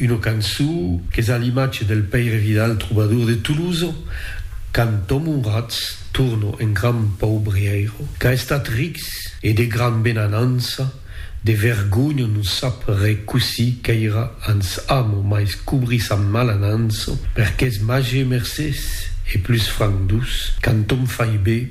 Una cançó qu'es a l'imatge del Pèire Vidal trobador de Tolosa, cantam onrats, torno en gran paubrièiro qu'a estat rics e de gran benanança, de vergonha non sap re cossí qu'èira ans amo mais cobrir sa malanança, per qu'es màger mercés e plus franc dus, cantam fai bé.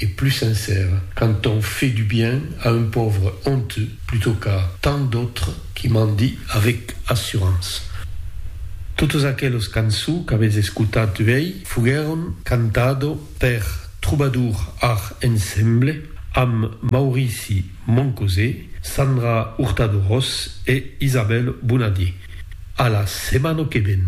et plus sincère quand on fait du bien à un pauvre honteux plutôt qu'à tant d'autres qui mendient avec assurance. Totes aqueles cançons qu'avètz escotat uèi foguèron cantado per Troubadour Art Ensemble amb Maurici Moncosé, Sandra Hurtado-Ros e Isabelle Bonadier. A la setmana que ven!